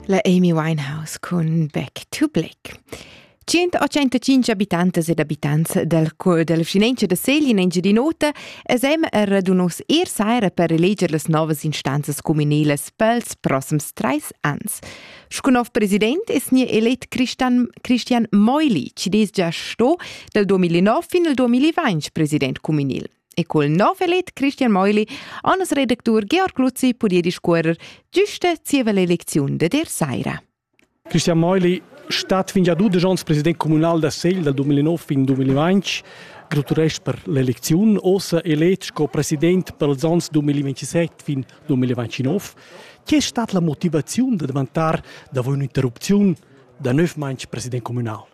La Amy Winehouse cun Back to Black. 185 abitantes ed abitants del, del Finanzia da Segli in Engiadin'Ota esem er radunos er saira per eleger las novas instanzas communelas pels prossims trais ans. Sco nov president es ni elet Christian, Christian Meuli, ci des già sto del 2009 fin al 2020 president communal. E col nov elet Christian Meuli Annas redactur Georg Luzzi pudia discuorer giusta zieva l'elecziun de der saira. Christian Meuli stat fin gia dudisch onns president communal da Segl dal 2009 fin 2020 graturesch per l'elecziun, ossa elet sco president per els onns 2027 fin 2029. Che è stata la motivazione da davantar davon un'interrupzione da nov manch president communal?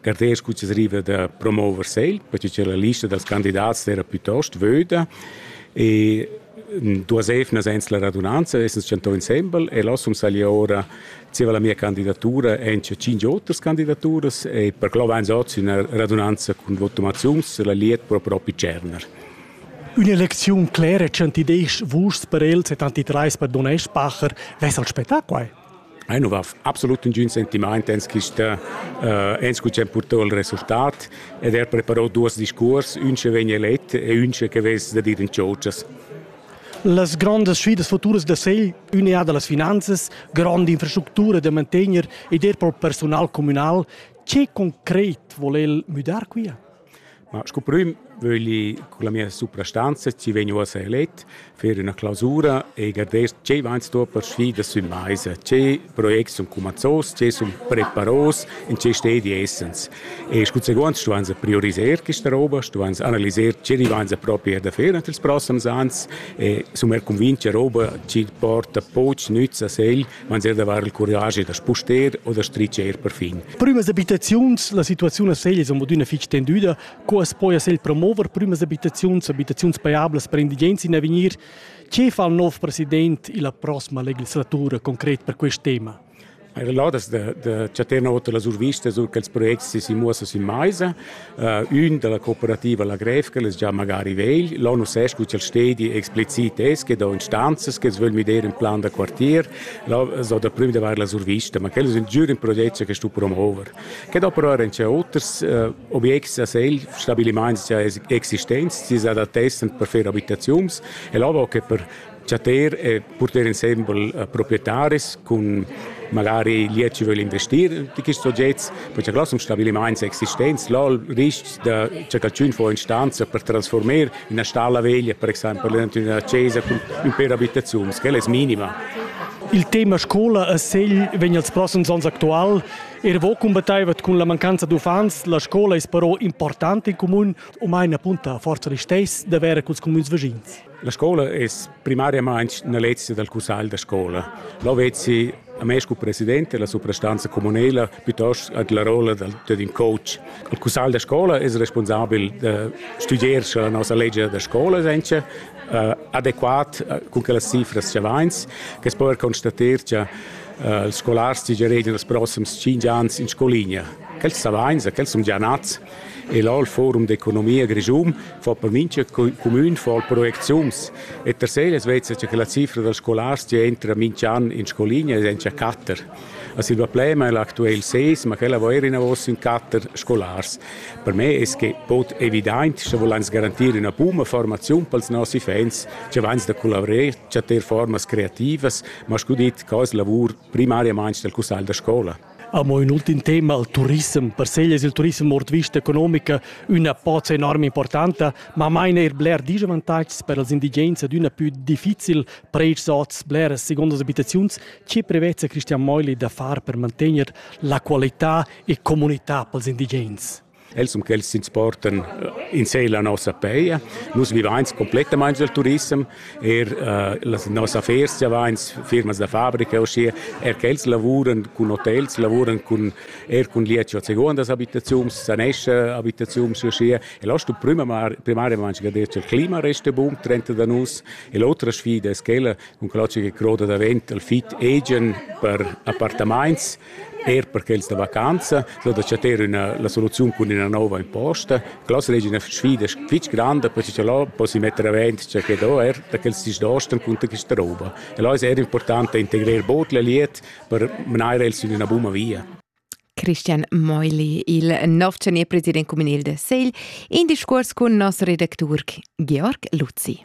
Carters cuzzeriva da promover segl, perché che la lista dals candidats era piuttost vöda e duas evnas ens la radunanza, essens chantò insembel e lossum sagli ora zieva la mia candidatura enche cinque oters candidaturas e per clo vains ozi üna radunanza cun votumaziuns la liet pro propi Cerner. Ün'elecziun clera ch'antideisch vus per els e tanti trais per Don Eschbacher, vess al spettà quai? Ei nu va absolut nagün sentimaint ens quista eh, ens cu c'è purtau il resultat ed er preparau duos discuors, ün che vegn elet e ün che vess da dir in ciotschas. Las grandas sfidas futuras da Segl, unea da las finanzas, grande infrastructura da mantegner ed er per personal communal, che concret vole el müdar quia? Ma sco prüm vögli con la mia suprastanza chi vegn uossa elet fer üna clausura e garder tgei vains sto per sfidas sün maisa, tge projects sun cumanzos, tge sun preparos, in tge stedi essans. E scu seguond stuains prioriser quista roba, stuains analiser tge rivains propi er da fer nat ils prossams ans e sun er cunvint cha roba chi porta poch nüz a segl man sehr davar il curage da spuster o da stricer perfin. Prümas abitaziuns, la situaziun a Segl es amodüna fich tendüda, co as poja sel promover prümas abitaziuns, abitaziuns pajablas per indigens in avegnir. Che fa il nov president illa prossima legislatura concret per quest tema? Era là, dass der, der Chaternauter la survista, so che ils progetti si muossa sin meisa. ün da la cooperativa La Gref, che es già magari vegl. Là nu s'es scu cha'l stedi explicit es, che do instanzas, che vögl müder ün plan da quartier. Là so daplü da vair la survista, ma quel es ün giür ün proget che stu promover. Que do però eran già oters äh, obiects a segl, stabilimaints già existents, si s'adattessan per fer abitaziuns e là vo che per chatter e porter insembel eh, proprietaris cun magari liet ci vögl investir di quist sogets per cha glossum stabilimaints existents lol riscs da cha calchün fo in stanza per transformer üna stalla veglia per exaimpel üna chesa cun ün per abitaziuns quella es minima Il tema scola a Segl vegn als prossums ans actual er vo combattaivat cun la mancanza d'uffants. La scola es però importante in comun, o mai una punta forza ristess d'avere culs comuns vischins. La scola es primariamaing üna lezia dal cussagl da scola. Là vezzi a me scu presidente la suprastanza comunela piuttost ad la rolla dal, dad ün coach. Il cussagl da scola es responsabel da studier scha la nossa legia da scola es encha uh, adequat uh, cun quellas cifras cha vains, che po er constater cha uh, els scolars giaregian els prossims 5 ans in scolinea. Quels savains, quels sun già nats, E l'al Forum d'economia grischun fa per mincha cumün fol projecziuns e tercel es vezza cha la cifra da scolars chi entra minch'an in scoligna es encha quatter. A Silva Plema è l'actuel seis, ma quella vo eir inavos in quatter scolars. Per me es que bod evidaint cha volans garantir üna buna formaziun pels nosi fans cha vans da collavrer chatter formas creativas, ma scu dit, co es lavur primariamaing dal cussagl da scola. Amo ün ultim tema, il turissem. Per Segl es il turissem ord vista economica üna pozza enorme importanta, ma main eir bler disavantatgs per els indigens ed üna pü difficil preits hoz bleras segundas abitaziuns. Che prevezza Christian Meuli da far per mantegner la qualità e comunità pels indigens? Els um quels s'insportan eh, in sé la nossa peia. Nus vivains complettamain del turism, er uh, la nossa affers vivains firmas da fabrica, ossia er quels lavuran cun hotels, lavuran cun er cun lieci a secondas abitaziuns, sanesce abitaziuns, ossia. E l'ostu primariamente che detto il clima resta bun, 30 da nus, e l'altra sfida è quella, con quello che croda davent al fit agent per appartaments, Er per quels da vacanza so da chattar üna la soluziun cun üna nouva imposta. Cla seigi üna sfida fitg granda per che lò possi metter avant che che do er da quels sis dostan cunter questa rouba. E là es er important da integrar bod la liet per menar els in üna buna via. Christian Meuli, il nov president communal de Segl, in discuors cun nos redactur Georg Luzzi.